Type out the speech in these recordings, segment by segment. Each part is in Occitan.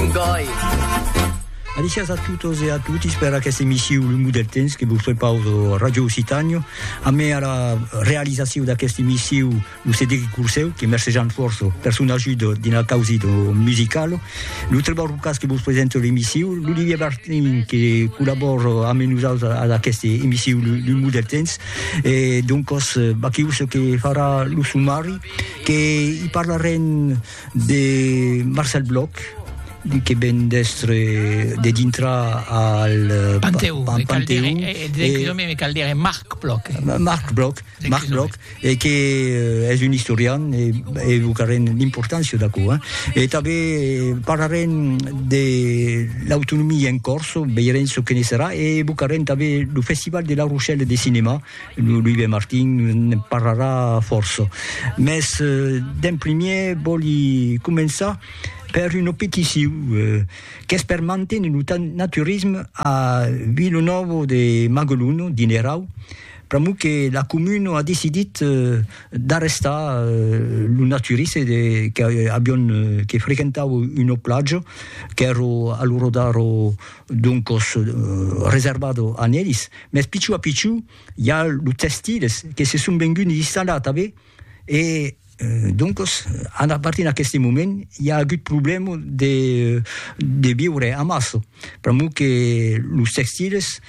un gòi. Alicias a totes e a totis per aquesta emissiu L'Umu del Temps que vos prepaus a Radio Occitània. A mai a la realizaciu d'aquesta emissiu lo Cedric Curseu, que mercejant fòrça per son ajuda dins la causi de musical. Lo Trevor Rucas que vos presenta l'emissiu. L'Olivier Bartlin que collabora amb nosaltres a aquesta emissiu L'Umu del Temps. E doncos, Baquius que farà lo sumari, que i parlarem De Marcel Bloch, que ven d'èstre de dintra al Panteu, pa, pa, Panteu e, e, e, e, e, me cal dire Marc Bloch. Marc Bloch, Marc Bloch, e que eh, és un historian e, e evocarem l'importància d'aquò. Eh? E també parlarem de l'autonomia en Corso, veirem ce que ne serà, e evocarem també lo Festival de La Rochelle de Cinema, Lo Louis de Martin ne'n parlarà fòrça. Mès d'en primièr vòli començar per una peticion qu'es per manténer lo naturisme a Vilanòva de Magalona, dins l'Erau, pr'amor que la comuna a decidit d'arrestar lo naturiste de que avián que frequentava una platja qu'èra a l'ora d'ara doncos reservado a nelis, mès pichou a pichou i a los tèxtiles que se son venguts installar tanben e doncos a partir d'aqueste moment i a agut problèma de de viure amassa pr'amor que los tèxtiles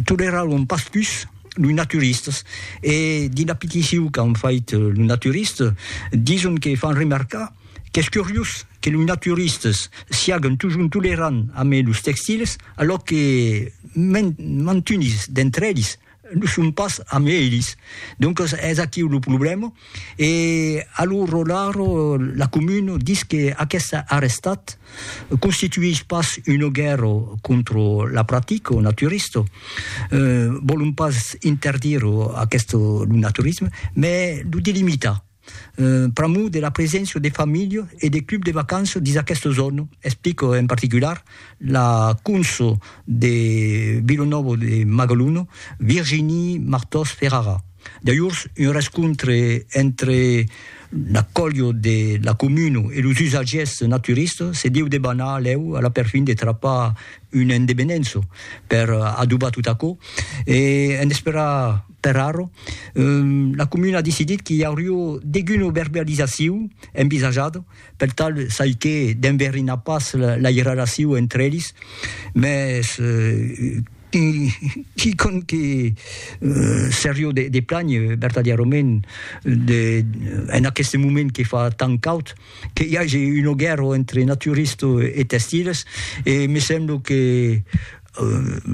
toleraràn pas pus los naturistas e dins la peticion qu'an fait los naturistas dison que fan remarcar Qu'es curiós que los naturistes siaguen totjorn tolerants amé los textils, alòc que mantunis d'entre elis lo son pas amé elis. Doncas es aquiu lo problèma. E a lo rolar, la comuna dis que aqueste arrestat constituís pas una guèrra contra la practica naturista, vòlon pas interdir aqueste lo naturisme, mai lo delimitar. pr'amor de la preséncia de familha e de club de vacança dins aquesta zòna, explica en particular la conso de Vila Nova de Magalona, Virginie Martòs Ferrara. D'ajorns, un rescontre entre la colha de la comuna e los usatgièrs naturistas se deu debanar lèu a la perfin de trapar una endevenença per adobar tot aquò e en esperar Per arro, la comuna a decidit qu'i aurió deguna verbializacion envisajada, per tal çai que d'enverinar pas la irrelacion entre elis, mès quicòm que serió de planh vertadièrament en aqueste moment que fa tant caud, que i age una guèrra entre naturistes e testiles, e me sembla que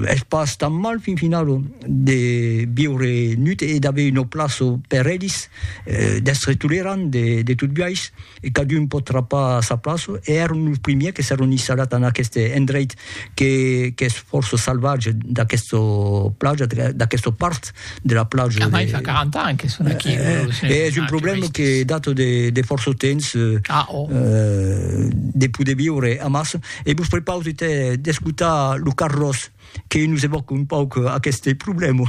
Es pas tan mal fin finau de viure nut e d'aver una plaça per elis, d'èstre tolerant de tot biais, e cadun pòt trapar sa plaça, e èron los primièrs que s'èron installat en aqueste endreit qu'es fòrça salvatge d'aquesta plaja, d'aquesta part de la plaja. Mai fa 40 ans que son aquí. E es un problèma que data de fòrça temps de poder viure amassa. E vos prepausè d'escotar lo Carlos que nos evòca un pauc aqueste problèma.